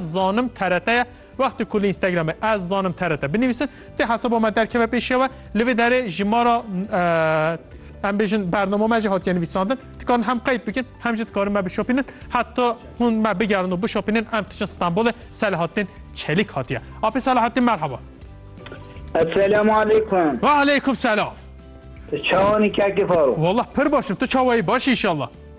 zanim TRT ye wextê ku li Instagramê ez zanim TRT binivîsin tê hesaba me derkeve pêşiya we li vê derê ji ma re em bêjin bernama me jî hatiye nivîsandin dikarin hem qeyd bikin hem jî dikarin me bişopînin heta hûn me bigerin û bişopînin em diçin Stenbolê Selahattin Çelîk hatiye Apê Selahattin merhaba Esselamu aleykum Ve aleykum selam Çawanî kekê faro Wallah pir başim tu çawayî baş inşallah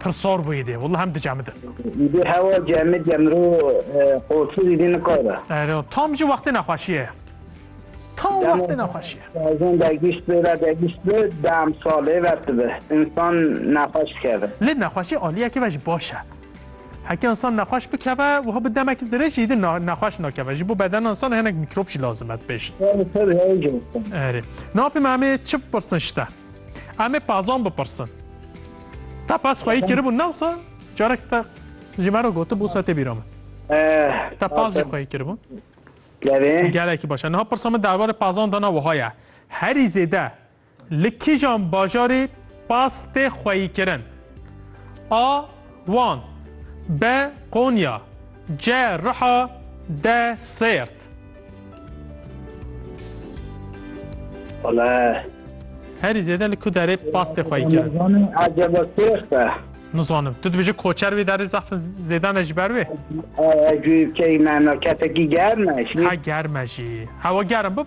Pir sor bû îdê. Willa hem dicemi de. Îdê hewa cemi de miro qolsiz îdê nikare. Ero, tam jî wextê nexweşîye ye. Tam wextê nexweşîye. Bazen dergîşt bi re dergîşt bi dem salê ver dibe. Însan nexweş dikeve. Lê nexweşî alîyekî ve jî baş e. Heke însan nexweş bikeve wiha bi demekî dirêj jî îdê nexweş nakeve. Ji bo bedena însan hinek mîkrop jî lazim e dibêjin. Erê, na pê me em ê çi bipirsin ji te? Em ê Pazon bipirsin. Te pas xweyî kiribû newsa carek te ji me re gotibû se tê bîra min. Te pas jî xweyî kiribû. Gelekî baş e. Niha pirsa min derbarê pazan dana wiha ye. Herî zêde li kîjan bajarî pas tê xweyîkirin? A Wan, be Konya, ce Riha, de Sêrt. Wale. Herî zêde li ku derê pastê xwe yî kirin? Nizanim ecebe Sêrt e. Nizanim. Tu dibêje koçer wê derê zaf zêde ne ji ber wê? Guyê keyî me me ketekî germ e. Ha germ e jî. Hewa germ bib.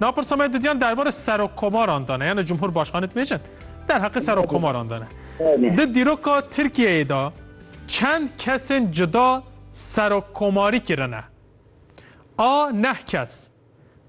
Na pirsa me didiyan derbarê serokkomaran de ne, yani cumhurbaşkanê dibêjin. Derheqê serokkomaran de ne. Di dîroka Tirkiyeyê de çend kesên cuda serokkomarî kirine. A neh kes.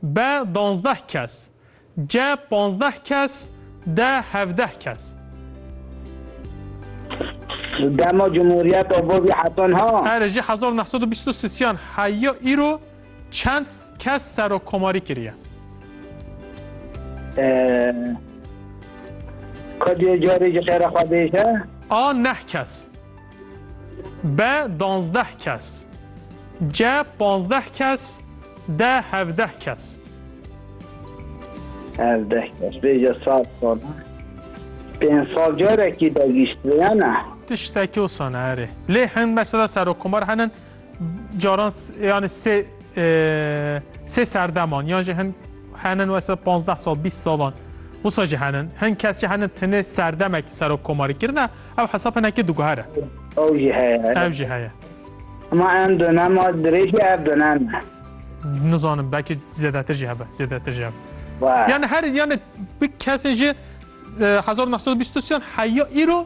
B danzdeh kes. C panzdeh kes. D hevdeh kes. Dema Cumhuriyeta bo vî hetan ha. Erê jî hezar û neh sed û bîst û sisiyan heya îro Çend kes serokkomarî kiriye? Xwe dê carê ji xêra xwe bêje. A neh kes. B danzdeh kes. C panzdeh kes. D hevdeh kes. Hevdeh kes. Bêje sat sal. Pênc sal carekî de gişt vêyana. Tiştekî wisa ne erê. Lê hin mesela serokkomar henin Caran yani sê sê serdeman yan jî hin henin wesa 15 sal 20 salan wisa jî henin hin kes jî henin tinê serdemekî serok komarî kirine ew hesab hinekî diguhere ew jî heye ew jî heye Ma em dönemar dirêjî ev dönem nizanim belkî zêdetir jî hebe zêdetir jî hebe yani her yani bi kesên jî 1923 heya îro